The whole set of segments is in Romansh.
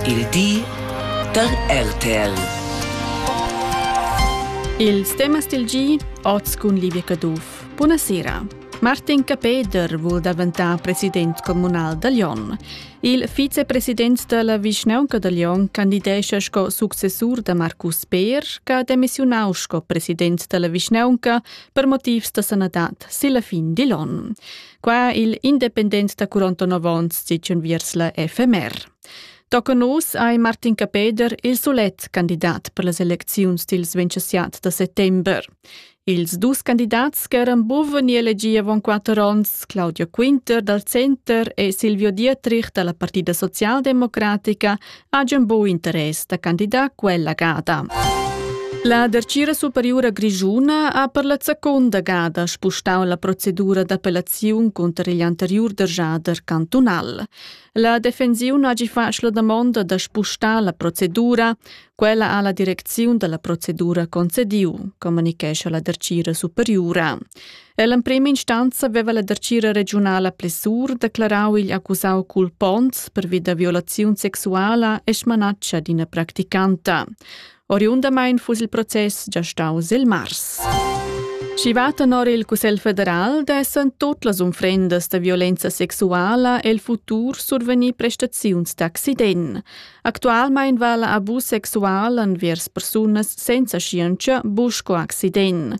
Il di da RTL. Ils temas del gi oz cun Livia Caduff. Buonasera. Martin Capeder vul daventar president comunal da Lyon. Il vicepresident della vischnaunca da Lyon candidescha sco successur da Marcus Peer, che ha demissionau sco president della vischnaunca per motivs da sanadad silla fin di Lyon. Qua il independent da 49 ons sitschun viers la FMR. Tocca nus ai Martin Capeder il solet candidat per las elecziuns dils 27 da settember. Ils dus candidats ch'eran buven ni elegi avon quatter onns, Claudio Quinter dal Center e Silvio Dietrich dalla Partida Socialdemocratica, hajan buc interess da candidar quella gada. La Dertgira Superiura Grischuna ha per la seconda gada spustau la procedura d'appellaziun cunter igl anteriur derjader cantunal. La defensiun hagi fatg la damonda da spustar la procedura. Quella ha la direcziun dalla procedura concediu, communichescha la Dertgira Superiura. Ell'emprema instanza veva la dartgira regiunala Plessur declarau igl accusau culpons pervi da violaziun sexuala e smanatscha d'ina practicanta. Oriundamain fuss il process già staus il mars. Schi va tenor il Cussegl federal dessen tot las unfrendas da violenza sexuala el futur survenir prestaziuns d'accident. Actualmein va la abus sexual envers persunas senza scienza buco accident.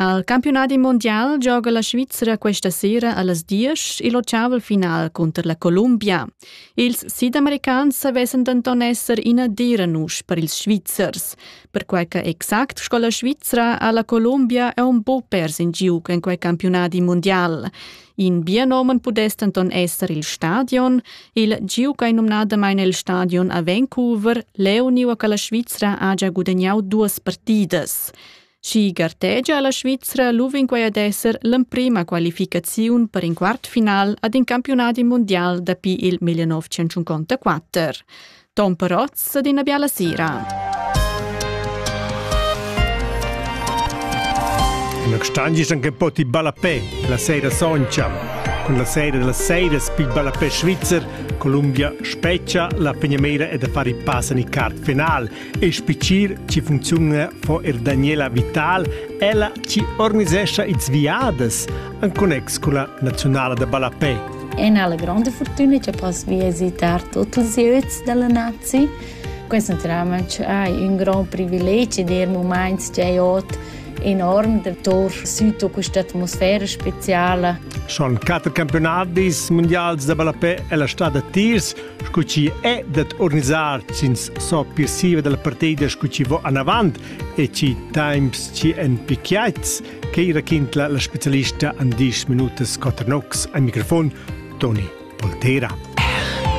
Al campiunadi mondial gioga la Svizra questa sera allas diesch il ottavel final cunter la Columbia. Ils sidamericans savessen denton esser ina dera nusch per ils Svizzers, perquei che exact sco la Svizra ha la Columbia aun buc pers in giug en quei campiunadi mondial. In bienomen pudess denton esser il stadion, il giug ei numnadamain il stadion a Vancouver, leu niua che la Svizra ha già gudagnau duas partidas. Schi gartegia la Svizra luvinquai ad esser l'emprima qualificaziun per in quart final ad in campiunadi mundial dapi il 1954. Tom Perotz ad ina biala sera. Una Stangisan che poti ballapé, la sera soncia. Con la sera della sera spid ballapé svizzer, Columbia speccia la pegnameira e da fare i pass in il quart final – e spichir chi funcziuna fo er Daniela Vital, ella chi organisescha its viadas en connex con la Naziunala da Ballapei. È una grande fortuna che posso visitar tutti i özi della nazi. Questo naturalmente è un gran privilegio di momenti che ot enorm datour sud a questa atmosfera speciale. Sono quattro campionati mondiali da ballapè e la strada Tirs scu chi è dad organisar ch'ins so piessiva dalla partida scu chi vo anavant e chi times chi en picchiaits che raquintla la specialista an 10 minutas Cotter Nox ai microfon Toni Poltera.